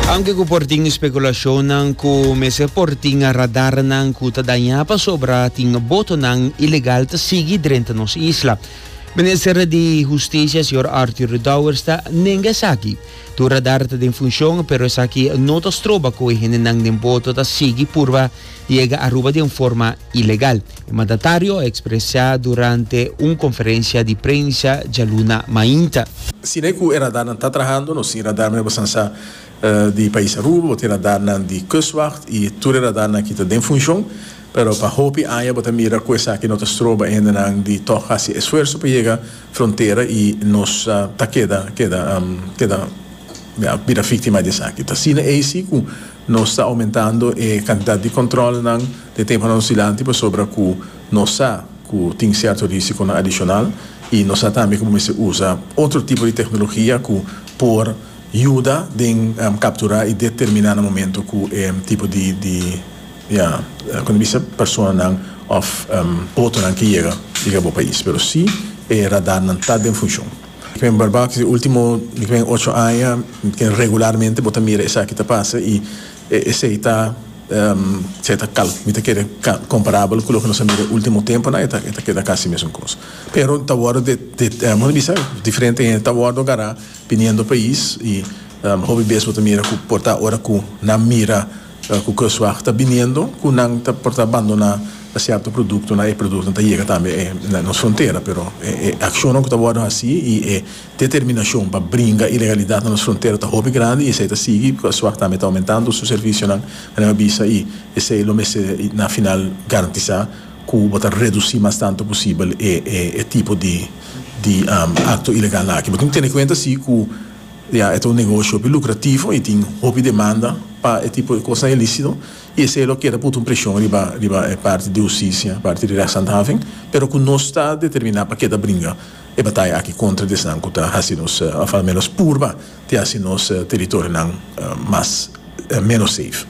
Aunke ku por tin spekulashonnan ku mester por tin radarnan ku ta dañá pasobra tin botonan ilegal ta sigui drenta nos isla. Minister di Hustisia, señor Arthur Dowers, ta nenga esaki. Tur radar ta den funshon, pero esaki no ta stroba ku e hendenan den boto ta sigui purba yega Aruba den forma ilegal, e mandatario a expresa durante un conferencia di prensa djaluna mainta. Si n'e cu e radarnan ta trahando, nos tin radarnan riba Sansá di pais Aruba, bo tin radarnan di Kustwacht y tur e radarnan aki ta den funcion, pero pa hopi aña bo ta mira cu esaki no ta stroba e hendenan di toch haci esfuerso pa yega frontera y nos ta keda keda keda bira victima di esaki. Ta asina ey si cu. Nos ta oumentando e kantidat di kontròlnan den tempanan dilanti pasobra ku nos sa ku tin sierto risikonan adishonal i nos sa tambe ku bo mester usa otro tipo di teknologia ku por yuda den kapturá i determiná na momentu ku e tipo di di kua ta bisa personanan òf botonan ke yega yega bo pais pero si e radarnan ta den funshon. P'e barbak di ultimo mi kren ocho aña mi tin regularmente bo ta mira esaki ta pasa y esey ta esey ta cal mi ta kere comparable cu loke nos a mira e ultimo temponan e ta keda casi mesun cos pero ta wordo bo ta bisa diferente hende ta wordo gara biniendo pais y hopi bes bo ta mira cu por ta ora cu nan mira Ku Kustwacht ta biniendo ku nan ta por ta bandoná sierto produkto nan e produktonan ta yega tambe na nos frontera pero e akshonnan ku ta wòrdu hasí i e determinashon pa bringa ilegalidat na nos frontera ta hopi grandi i esei ta sigui Kustwacht tambe ta oumentando su servishonan anima a bisa i esei lo mester na final garantisá ku bo ta redusí mas tantu posibel e tipo di aktonan ilegalnan aki bo tin tene kuenta si ku. Ya, e ta un negoshi hopi lucrativo y tin hopi demanda pa e tipo di cosnan ilícito y esey lo keda putu un presion riba riba e parti di hustisia, parti di rechtshandhaving, pero cu nos ta determina pa keda bringa e bataya aki contra di esnan cu ta haci nos, of al menos purba di haci nos teritorionan mas menos safe.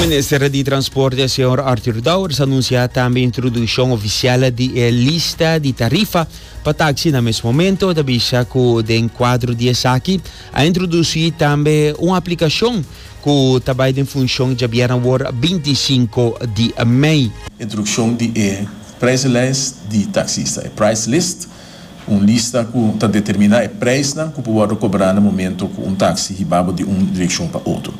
Minister di Transporte señor Arthur Dowers anuncia tambe introduccion oficial di e lista di tarifa pa taxi na mes momento. Ta bisa cu den cuadro di esaki a introduci tambe un aplicacion cu ta bay den funcion djabier awor 25 di mei. Introduccion di e prijzenlijst di taxista, e price list, Un lista ku ta determiná e preisnan ku por wòrdu kobrá na momento ku un taksi hiba bo di un direkshon pa otro.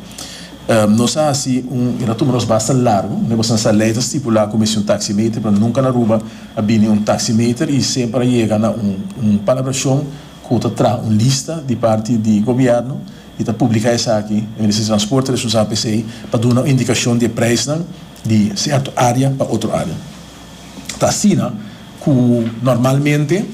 Nos a hasi un. E ta tuma nos basta largu. Meba san sa lei ta stipulá ku mester un taksimeter pero nunka na Aruba a bini un taksimeter i semper a yega na un palabrashon ku ta traha un lista di parti di gobièrnu i ta publiká esaki. E Ministerio di Transporte ta responsabel pa esei pa duna un indikashon di e preisnan di sèrto área pa otro área. Ta asina ku normalmente,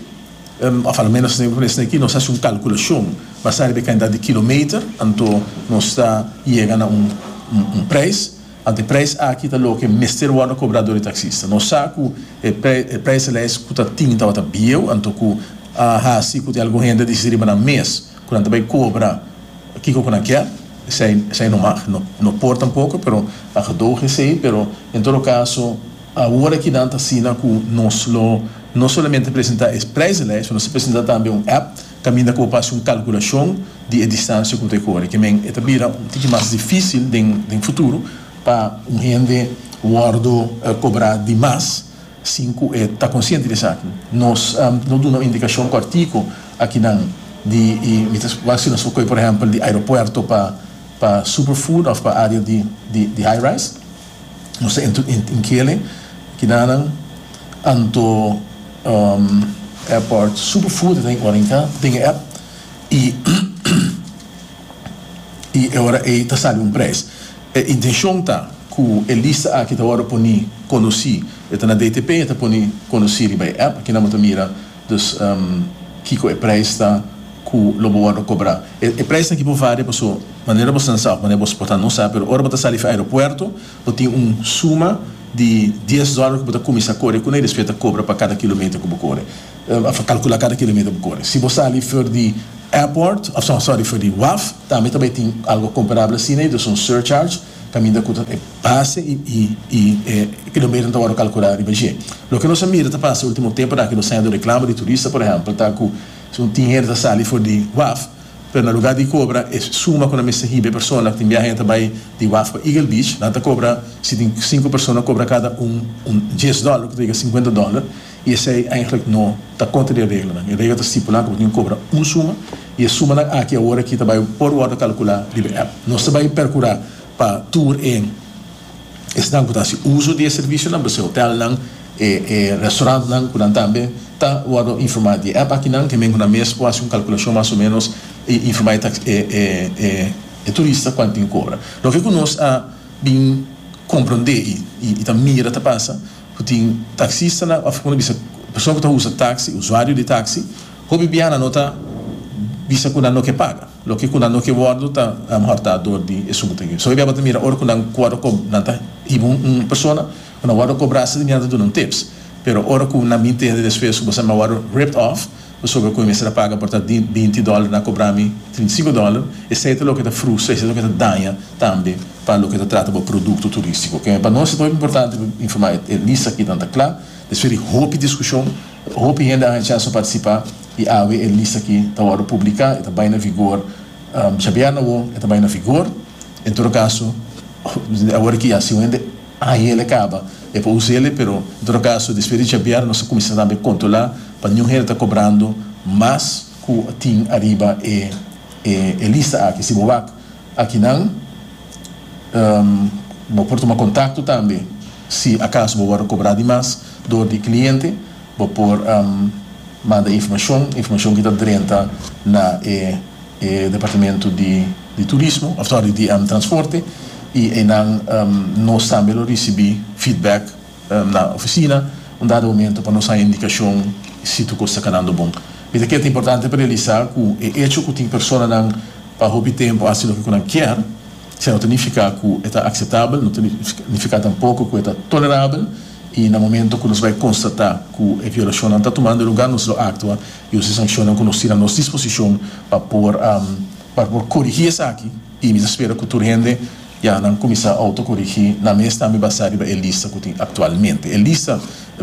òf alomenos esnan ku esnan aki, nos hasi un kalkulashon basá riba e kantidat di kilometer, anto nos ta yega na un un preis, anto e preis aki ta loke mester wòrdu kobrá dor e taksista. Nos sa ku e pre e preislijst ku ta tin tabata bieu, anto ku a hasi ku tin algun hende a disi riba nan mes ku nan ta bai kobra kiko ku nan kier. Esei esei no mag. No no por tampoco, pero a gedoge esei. Pero en todo caso awor aki nan ta asina cu nos lo no solamente presenta e prijzenlijst, nos ta presenta tambe un app caminda cu bo por haci un calculacion di e distancia cu ta e core. Ke men e ta bira un tiki mas dificil den den futuro pa un hende wordo cobra di mas Sin cu e ta consciente di esaki, nos lo duna un indicacion cortico akinan di y mi ta wou hasi nos lo coe por ehempel di aeropuerto pa pa superfood of pa area di di high rise. Nos ta entro in kele kidanan anto airport superfood e ta den ora in ka den e app y. y e ora ey ta sali un prijs. E intencion ta cu e lista aki ta wordo poni conoci, e ta na DTP y e ta poni conoci riba e app, aki nan bo ta mira dus kico e prijs ta cu lo bo wordo cobra. E prijsnan aki por varia paso manera bo stansa of manera bo por ta no sa, pero ora bo ta sali fi aeropuerto bo tin un suma di dies dollar cu bo ta cuminsa core cun'e y despues e ta cobra pa cada kilometer cu bo core. A for calcula cada kilometer bo core. Si bo sali for di airport, of sorry for di waf, tambe ta bay tin algo comparable asina y ta bay un surcharge caminda cu ta e base y e kilometer ta word calcula riba dje. Loke nos a mira ta pasa e ultimo temponan aki nos ta hende reclamo di turista por ehempel ta cu tin hende ta sali for di waf pero na lugar di cobra e suma cu nan mester hiba e persona tin biaha hende ta bay di waf pa Eagle Beach nan ta cobra si tin cinco persona cobra cada un un dies dollar cu ta yega cincuenta dollar i esei eindelijk no ta kontra di e reglanan. E regla ta stipulá ku bo tin ku kobra un suma, i e sumanan aki awor aki ta bai por wòrdu kalkulá riba e app. Nos ta bai perkurá pa tur e esnan ku ta hasi uso di e servisionan, por ese hotelnan, e e restaurantnan ku nan tambe ta wòrdu informá di e app akinan, hemen ku nan mes por hasi un kalkulashon mas o ménos i informá e tax e e e e turista kuantu tin ku kobra. Loke ku nos a bin komprondé i ta mira ta pasa. Ku tin taksistanan òf kòmo nan bisa persona ku ta usa taksi, usuario di taksi, hopi biaha nan ta bisa ku nan no ke paga. Loke ku nan no ke wòrdu ta alomehor ta dor di e suma ta yu. Esei bo tabata mira ora ku nan wòrdu ko nan ta hiba un persona ku nan wòrdu kobrá sentimentu ta duna un tips. Pero ora ku nan mintende despues ku bo sa nan wòrdu ripped off pasobra cu e mester a paga por ta binti dollar na cobra mi trinta y cinco dollar, esey ta loke ta frustra, esey ta loke ta daña tambe pa loke ta trata bo producto turistico. Ok, pa nos ta hopi importante pa informa e lista aki nan ta cla, despues di hopi discusion, hopi hende a haña chance pa participa y awe e lista aki ta wordo publica, e ta bay na vigor djabièrna awo, e ta bay na vigor, en todo caso, awor aki ya si un hende. Ahiel e caba e pa Uziele, pero en todo caso despues di djabiar nos a cuminsa tambe controla pa niun hende ta cobrando mas cu tin ariba e lista aki. Si bo wak akinan bo por tuma contacto tambe si acaso bo wordo cobra di mas door di e cliente bo por manda informacion, informacion ki ta drenta na e. E departamento di di turismo, of sorry, di transporte y eynan nos tambe lo ricibi feedback na oficina un dado momento pa nos haya indicacion si tur cos ta canando bon. Mira que ta importante pa realisa cu e hecho cu tin personanan pa hopi tempo haci loke cu nan kier sino ta nifica cu e ta aceptabel, no ta nifica tampoco cu e ta tolerabel y na momento cu nos bay constata cu e violacionnan ta tumando lugar nos lo actua y osi sanccionnan cu nos tin a nos disposicion pa por pa por corigi esaki y mi ta spera cu tur hende ya nan cuminsa auto corigi nan mes tambe basa riba e lista cu tin actualmente. E lista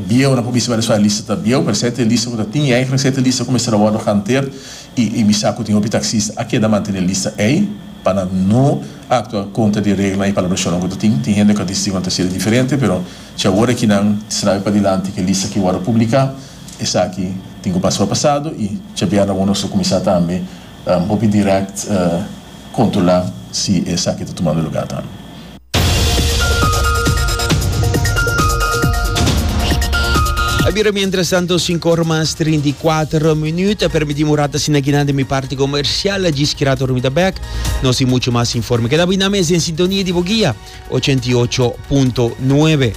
bieu nan por bisa wèrdespa e lista ta bieu pero e sete lista cu ta tin yai e sete lista cu mester a wordo hanteer y y mi sa cu tin hopi taxista a keda mantene lista ei pa nan no actua contra di e reglanan y palabracionnan cu ta tin. Tin hende cu a dici cu nan ta hasié diferente pero chi awor aki nan trabi padilanti cu e lista cu a wordo publica. Esaki tin ku pasá pasado i djabièrna bo nos lo kuminsá tambe hopi dirèkt kontrolá si esaki ta tumando lugá tambe. A bira mientrastantu sinku ora mas trinta i kuater minüt. A permitími un rata asina kinan den mi parti komersial. A djis ki rata ora mi ta bèk nos tin muchu mas informe. Keda bo inami es den sintonia di bo guia ochenta i ocho punto nuebe.